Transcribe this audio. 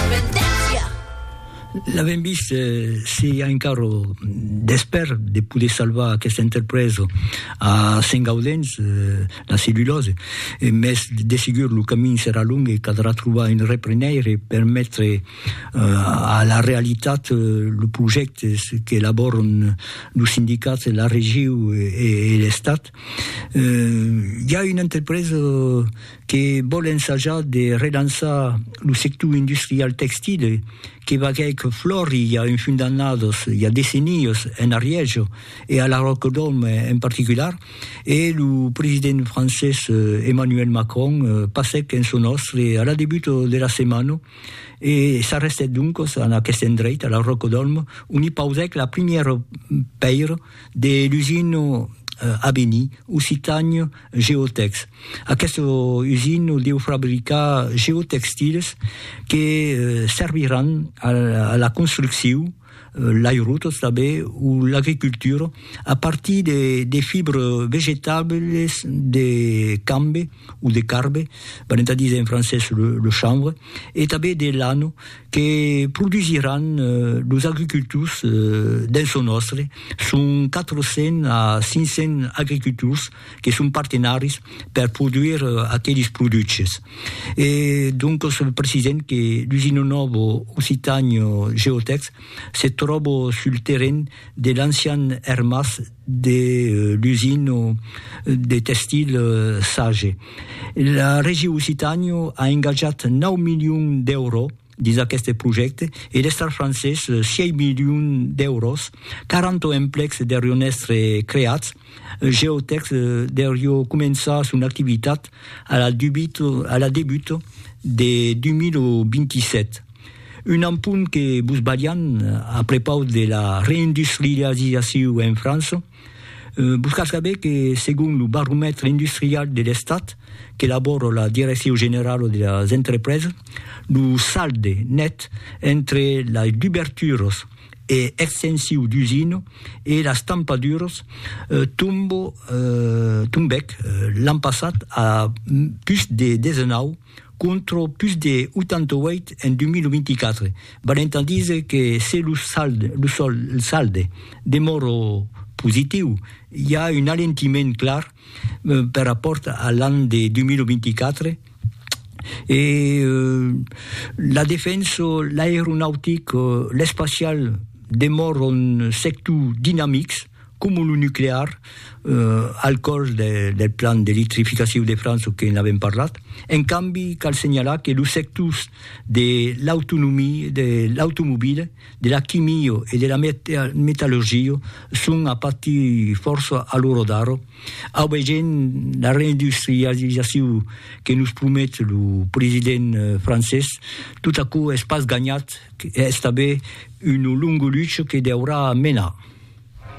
Independéncia! L'avèm vist, se i a encara d'espèr de poder salvar aquesta entrepresa a Sentgaudens, la cellulòse, mès de segur lo camin serà long e caldrà trobar un reprenèir e permetre a la realitat los projèctes qu'elabòran los sindicats e la regiu e l'Estat. I a una entrepresa que vòl ensajar de relançar lo sector industrial textile que vaguèc flòri i a un fum d'annadas, i a decennias, en Arièja e a la Ròcadòm en particular, e lo president francés Emmanuel Macron passèc en son òstre a la debuta de la setmana e s'arrestèt doncas en aqueste endreit, a la Ròcadòm, ont i pausèc la primièra pèira de l'usina Aveni, Occitània, Geotex. Aqueste usin o deu fabricar geotextiles que serviràn a la construcciu, l'airotos tanben o l'agricultura a partir de fibres vegetables de cambe o de carbe, valent a díser en francés le chanvre, e tanben de lano que produsiràn los agricultors dens lo nòstre, son 400 a 500 agricultors que son partenaris per produire aqueles produches. E doncas precisèm que l'usina nòva Occitània Geotèx se tròba sul terren de l'ancian ermàs de l'usina de tèxtil Sage. La Regi Occitània a engatjat 9 milions d'èuros dins aqueste projècte e l'Estat francés 6 milions d'èuros, 40 emplecs deurion èstre creats, Geotex deurió començar son activitat a la debuta de 2027. Un ampun que vos balhan a prepaus de la reindustrializaciu en França. Vos cal saber que segon lo baromètre industrial de l'Estat qu'elabora la Direcciu Generala de las Entrepresas, lo salde net entre las duberturas e extensiu d'usina e las tampaduras tombèc l'an passat a pus de 19 contra pus de 88 en 2024, valent a díser que se lo salde demòra positiu, i a un alentiment clar per rapòrt a l'an de 2024, e la defensa, l'aeronautic, l'espacial demòran sectors dinamics. Coma lo nuclear, al còrs del plan d'electrificaciu de França que n'avèm parlat. En cambi, cal senhalar que los sectors de l'autonomia, de l'automobila, de la quimia e de la metallurgia son a patir fòrça a l'ora d'ara, aubegent la reindustrializaciu que nos promet lo president francés. Tot aquò es pas ganhat, es tanben una longa lucha que deurà menar.